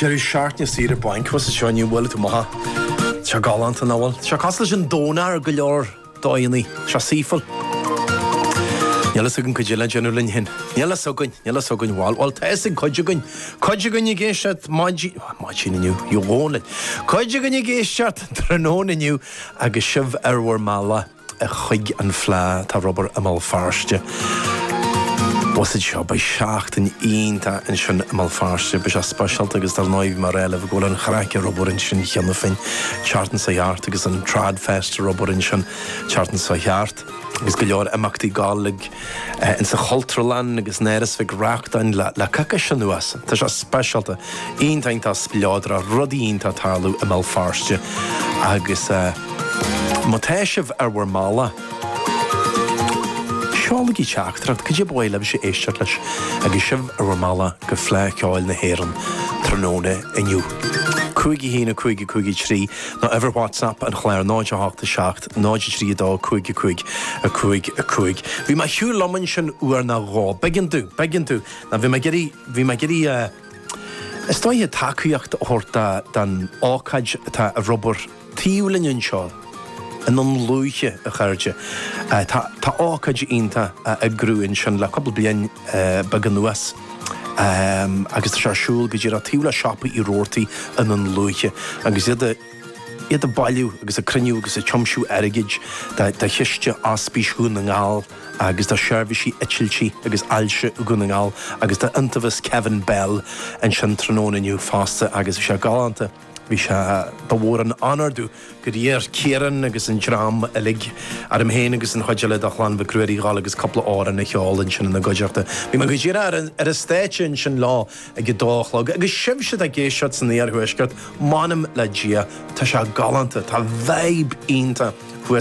Deireadh seachtaine saoire bainc. Agus seo inniu, bhfuil tú maith? Seo galánta nach bhfuil? Seo cosúil leis an Domhnach ar go leor dóigheannaí. Seo saoithiúil. Níl fhios againn cad é le déanamh linn fhéin. Níl fhios againn, níl fhios againn bhuel. Bhuel, tá fhios ag cuid againn. Cuid againn ag éisteacht maidin, maidin inniu, ó a Dhónaill. Cuid againn ag éisteacht tráthnóna inniu agus sibh ar bhur mbealach. chuig an fhleadh atá ar obair i mBéal Feirste. Bhuiséad seo, beidh seachtain iontach ansin i mBéal Feirste, beidh sé speisialta agus dar ndóigh bhí mé ag rá libh go bhfuil an chraic ar obair ansin cheana féin an tseachtain seo thart agus an Tradfest ar obair ansin an tseachtain seo thart agus go leor imeachtaí Gaeilge. ins an Chultúrlann agus in Áras Mhic Reachtain le coicís anuas. Tá sé speisialta, iontach spleodrach, rudaí iontach ag tarlú i mBéal Feirste agus má tá sibh ar bhur mbealach, seolaigí teachtaireacht, cad é ba mhaith libhse éisteacht leis agus sibh ar bhur mbealach go Fleadh Cheoil na hÉireann tráthnóna inniu. 5 1 5 5 3 nó uimhir WhatsApp an chláir 0 8 7 0 3 2 5 5 5 5 Bhí mé ag siúl liom ansin uair nó dhó. B'éigean domh, b'éigean domh, nó bhí mé ag iarraidh, bhí mé ag iarraidh eh, is dóiche tacaíocht a thabhairt do, don ócáid atá ar obair taobh linn anseo i nDún Lúiche, a chairde. Eh, tá, tá ócáid iontach á eagrú ansin le cúpla bliain eh, beag anuas. Ehm, agus tá sé ar siúl go díreach taobh le siopa Uí Robhartaigh i nDún Lúiche agus iad a, iad ag bailiú agus ag cruinniú agus ag tiomsiú airgid do chiste Ospís Dhún na nGall agus do Sheirbhísí Eitiltí agus Ailse Dhún na nGall agus do Iontaobhas Kevin Bell ansin tráthnóna inniu fosta agus bhí sé galánta. Bhí sé, ba mhór an onóir dúinn gur iarr Ciarán agus an dream uilig, orm féin agus an chuid eile de Chlann Mhic Ruairí, dhul agus cúpla amhrán a cheol ansin ina gcuideachta. Bhí mé go díreach ar an stáitse ansin leo. ag a dó a chlog agus sibhse atá ag éisteacht san iarthuaisceart, m'anam le Dia, tá sé galánta, tá vibe iontach thuas.